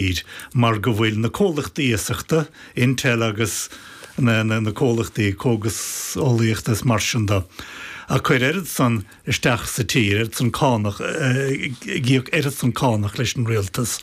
fhíor, mar go bhfuil na comhlachtaí iasachta, Intel agus na comhlachtaí cógaseolaíochta is mar sin de, ag cur oiread san isteach sa tír, oiread san cánach, ag íoc oiread san cánach leis an rialtas,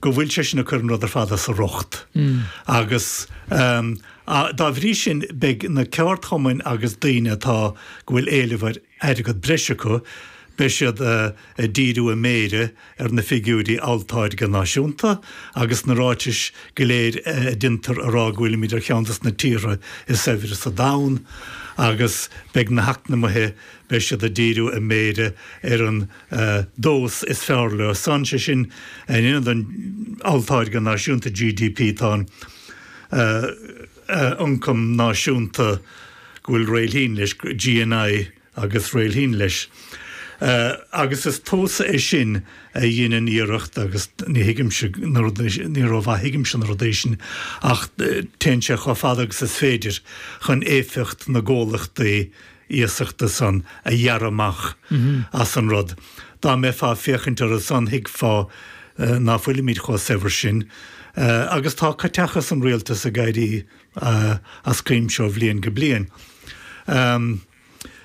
go bhfuil sé sin ag cur an rud ar fad as a riocht. Agus dá bhrí sin beidh na ceardchumainn agus daoine atá, go bhfuil éileamh ar, airgead breise acu, beidh siad ag díriú a méire ar na figiúirí olltáirgeadh náisiúnta agus na ráitis go léir a dhéantar á rá go bhfuilimid ar cheann de na tíortha is saibhre sa domhan agus beidh na heacnamaithe, beidh siad ag díriú a méire ar an dtomhas is fearr leo san, sé sin in ionad an olltáirgeadh náisiúnta, GDP. Tá an. ioncam náisiúnta go bhfuil réilthín leis, GNI agus réilthín leis. Agus is tomhas é sin a dheineann iarracht, agus ní thuigimse na rud, ní ró-mhaith a thuigimse na rudaí sin, ach téann sé chomh fada agus is féidir chun éifeacht na gcomhlachtaí iasachta san a ghearradh amach as an rud. Dá mbeifeá ag féachaint air san thuigfeá ná fuilimid chomh saibhir sin. Agus tá caiteachas an rialtais ag éirí as cuimse ó bhliain go bliain.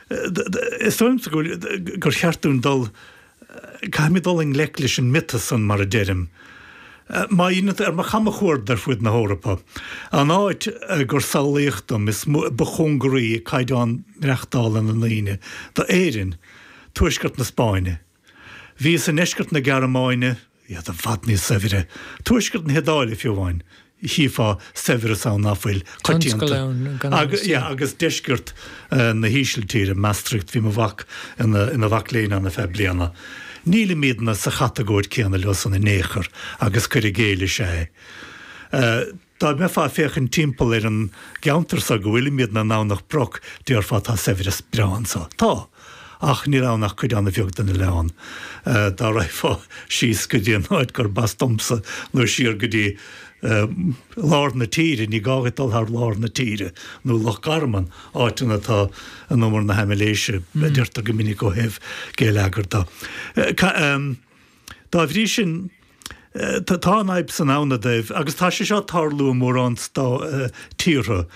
Is dóigh liomsa gur cheart dúinn dul. Caithfimid dul i ngleic leis an miotas san, mar a deirim. Má fhilleann tú ar mo chamchuaird ar fud na hEorpa, an áit gur samhlaíodh dom is mó ba chóngaraí caighdeán maireachtála na ndaoine do Éirinn, tuaisceart na Spáinne. Bhíos i ndeisceart na Gearmáine. iad i bhfad níos saibhre. Tuaisceart na hIodáile, fiú amháin, chífeá saibhreas ann nach bhfuil coitianta. Agus deisceart na hÍsiltíre, Maastricht, bhí mo mhac ina mhac léinn ann ar feadh bliana, nílimidne sa chatagóir céanna leo san in aon chor agus cuir i gcéill is ea é. Dá mbeifeá ag féachaint timpeall ar an gceantar so go bhfuilimidne i nDomhnach Broc, déarfá tá saibhreas breá anso. Tá. Ach níl ann ach cuid an-bheag den oileán. Dá raghfá síos go dtí an áit gurb as domsa, nó siar go dtí, eh, lár na tíre, ní gá dhuit dul thar lár na tíre, nó Loch Garman, áiteanna atá in umar na haimléise, a deirtear go minic ó thaobh geilleagair de. Eh, ca, em. Dá bhrí sin, tá an fhadhb san ann dóibh, agus tá sé seo ag tarlú i mórán tíortha,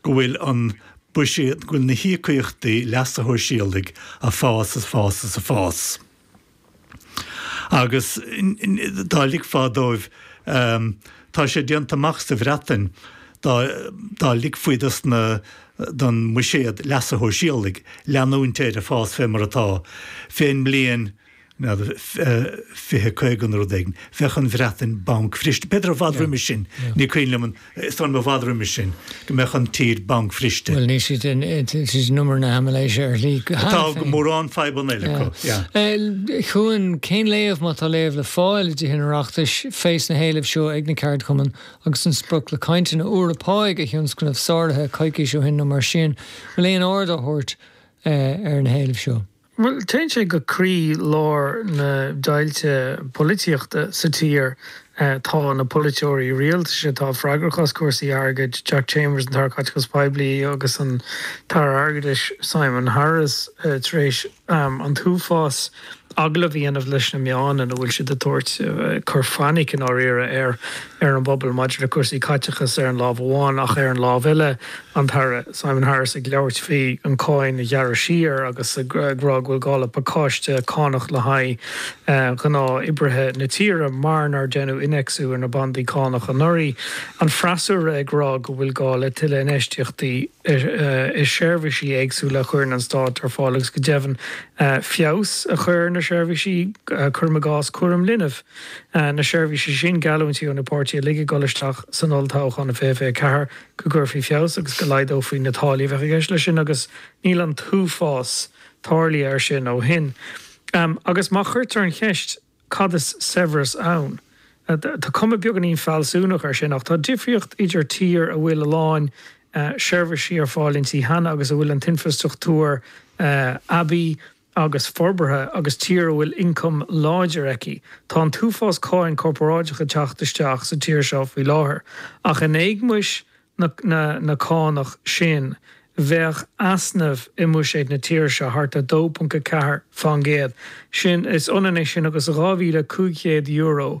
go bhfuil an buiséad, go bhfuil na híocaíochtaí leasa shóisialaigh ag fás is ag fás is ag fás. Agus dá ligfeá dóibh, tá sé déanta amach sa Bhreatain, dá ligfí don bhuiséad leasa shóisialaigh leanúint air ag fás fé mar atá, fén mbliain, n'fheadar, fiche, caoga nó rud éigin. Bheadh an Bhreatain bancbhriste. B'fhéidir i bhfad roimis sin, ní cuimhin liom an, is dóigh liom i bhfad roimis sin, go mbeadh an tír bancbhriste. Bhuel, níl siad in, siad in umar na haimiléise ar shlí, cheana féin. Tá go mórán fadhbanna eile acu, yeah. Cuan, cén léamh, má tá léamh le fáil i dTithe an Oireachtais, féach na héilimh seo ag na ceardchumainn agus an sprioc le cainteanna úra pá a thionscnamh sáraithe coicís ó shin nó mar sin, bhfuil aon aird á thabhairt ar na héilimh seo? Bhuel, téann sé go croí lár na deighilte polaitíochta sa tír. Tá na polaiteoirí rialtais atá freagrach as cúrsaí airgid, Jack Chambers, an tAire Caiteachais Poiblí, agus an tAire Airgeadais, Simon Harris, tar éis an t-uafás agallamh a dhéanamh leis na meáin ina bhfuil siad ag tabhairt cur fainic, i ndáiríre, ar an bpobal maidir le cúrsaí caiteachais ar an lámh amháin ach ar an lámh eile, An tAire Simon Harris ag labhairt faoi an cáin a ghearradh siar agus ag rá go bhfuil gá le pacáiste cánach le haghaidh ghnáth oibrithe na tíre mar nár deineadh inneacsú ar na bandaí cánach anuraidh. An freasúra ag rá go bhfuil gá le tuilleadh infheistíochta i seirbhísí éagsúla a chuireann an Stát ar fáil agus go deimhin feabhas a chur ar na seirbhísí, cuirim i gcás cúram linbh. Na seirbhísí sin, geallúintí ó na páirtithe uilig ag dul isteach san olltoghchán 2024 go gcuirfí feabhas agus go laghdófaí na táillí a bheadh i gceist leis sin agus níl an t-uafás tarlaithe air sin ó shin. Agus má cuirtear an cheist cad is saibhreas ann, tá cuma beagáinín fealsúnach air sin, ach tá difríocht idir tír a bhfuil a lán seirbhísí ar fáil inti cheana agus a bhfuil an t-infreastruchtúr aibí agus forbartha agus tír a bhfuil ioncam láidir aici. Tá an t-uafás cáin corporáideach ag teacht isteach sa tír seo faoi láthair, ach in éagmais na cánach sin bheadh easnamh i mbuiséad na tíre seo thart ar 2.4%, sin, is ionann é sin agus €2,500,